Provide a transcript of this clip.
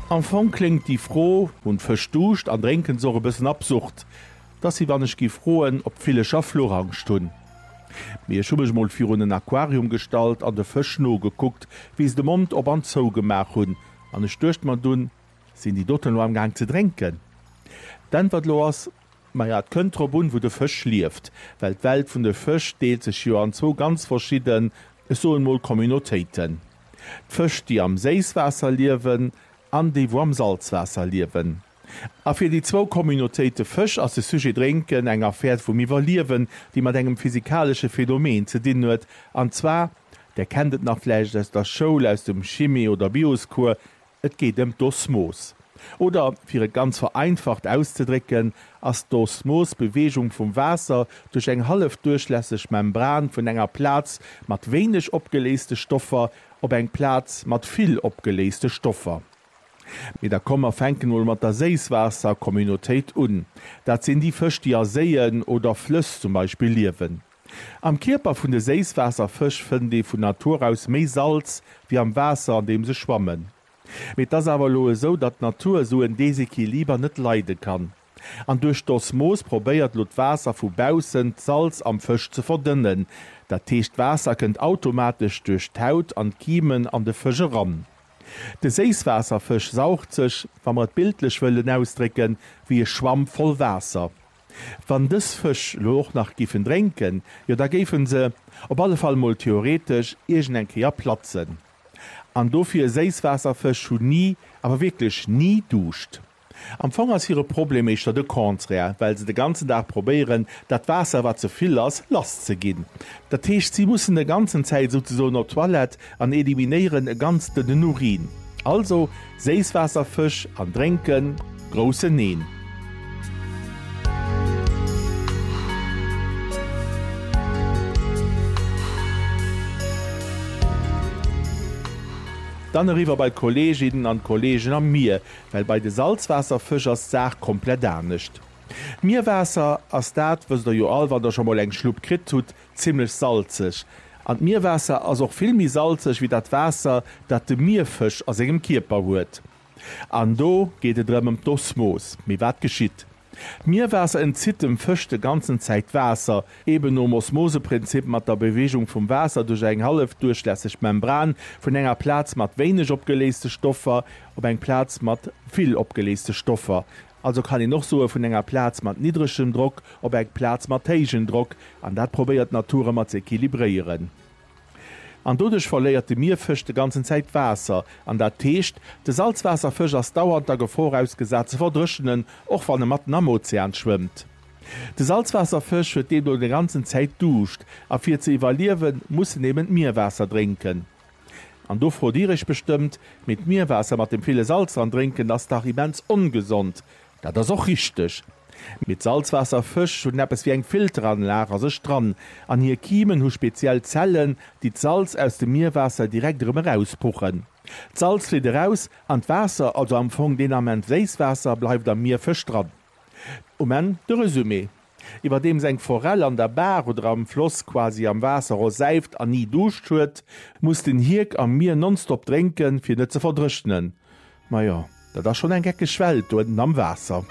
Am Fong kléngt déi Fro, Hunn d'Fësch Duuscht an drénken se och? e bëssen absurd. Et ass wéi wann ech géif froen, ob d'Villecher Fluchangscht hunn. Mee ech hu mech mol virun en Aquarium gestallt an de Fësch nogekuckt, wéi se de Mond op an zou gemaach hunn, an ech duecht mer dunn, Sinn déi doten elo amgaang ze drénken? D'Äntwert elo ass, Maja, et kënnt drop un, wou de Fësch lieft, well d'Welt vun de Fësch deelt sech jo an zwou ganz verschidden, ech soen mol Communautéiten. D'Fësch, déi am Séisswaasser liewen an déi, wou am Salzwaasser liewen. A fir déi zwou Communautéite Fësch ass de Sujet Drénken eng Affär vum Iwwerliewen, déi mat engem physikalesche Phänomen ze dinn huet, an zwar, Der kennt et nach vläicht aus der Schoul, aus dem Chimie oder Bioscours, Et geet ëm d'Osmos. Oder fir et ganz vereinfacht auszedrécken, ass d'Osmos d'Beweegung vum Waasser duerch eng hallefduerchlässeg Membran vun enger Plaz mat wéineg opgeléiste Stoffer op eng Plaz mat vill opgeléiste Stoffer. Mee da komm mer fänken emol mat der Séisswaasser-Communautéit un. Dat sinn déi Fësch, déi a Séien oder Flëss zum Beispill liewen. Am Kierper vun de Séisswaasserfësch fënnt ee vun Natur aus méi Salz wéi am Waasser an deem se schwammen. Mee et ass awer elo esou, datt d'Natur esou en Desequiliber net leide kann. An duerch d'Osmos probéiert elo d'Waasser vu baussen d'Salz am Fësch ze verdënnen. Dat heescht d'Waasser kënnt automatesch duerch d'Haut an d'Kiemen an de Fësch eran. De Séisswaasserfësch saugt sech, wa mer et bildlech wëllen ausdrécken, wéi e Schwamm voll Waasser. Wann dës Fësch elo och nach géifen drénken, jo da géife se, op alle Fall mol theoretesch, iergend eng Kéier platzen. An dofir, Séisswaasserfësch hunn ni, awer wierklech ni Duuscht. Am Fong ass hire Problem éischter de Contraire, well se de ganzen Dag probéieren, dat Waasser, wat ze vill ass, lasszeginn. Dat heescht, si mussen de ganzen Zäit souzesoen op d'Toilette, An eliminéieren e ganz dënnen Urin. Also Séisswaasserfësch an drénken? Groussen Neen! Dann eriwwer bei d'Kolleeginnen an d'Kolleegen am Mier, well bei de Salzwaasserfësch ass d'Saach komplett anescht. D'Mierwaasser ass dat, wësst der jo all, wann der scho mol eng Schlupp kritt hutt, Zimmlech salzeg. An d'Mierwaasser ass och vill méi salzeg wéi dat Waasser, dat de Mierfësch a sengem Kierper huet. An do geet et erëm ëm d'Osmos. Mee wat geschitt? D'Mierwaasser entzitt dem Fësch de ganzen Zäit Waasser, eben nom Osmoseprinzip mat der Bewegung vum Waasser duerch eng hallefduerchlässeg Membran vun enger Plaz mat wéineg opgeléiste Stoffer op eng Plaz mat vill opgeléiste Stoffer. Also kann een och soe vun enger Plaz mat niddregem Drock op eng Plaz mat héigen Drock, an dat probéiert d'Natur ëmmer ze equilibréieren. An doduerch verléiert de Mierfësch de ganzen Zäit Waasser, an dat heescht, de Salzwaasserfësch ass dauernd der Gefor ausgesat ze verdréchenen, och wann e matten am Ozean schwëmmt. De Salzwaasserfësch huet deemno de ganzen Zäit Duuscht, a fir ze iwwerliewen, muss en eben d'Mierwaasser drénken. An do frot Dir Iech bestëmmt, Mee d'Mierwaasser mat dem ville Salz dran drénken ass dach immens ongesond. Dat ass och richteg. Mee d'Salzwaasserfësch hunn eppes wéi eng Filteranlag a sech dran an hir Kimen hu speziell Zellen, déi d'Salz aus dem Mierwaasser direkt erëm erauspuchen. D'Salz flitt eraus an d'Waasser, also am Fong deen Ament Séisswaasser, bleift am Mierfësch dran. Um Enn de Resumé, Iwwerdeems eng Forell an der Baach oder am Floss quasi am Waasser rosäift an ni Duuscht huet, muss den Hierk am Mier nonstop drénken, fir net ze verdrëchnen. Majo, dat ass schonn eng geckeg Welt do ënnen am Waasser.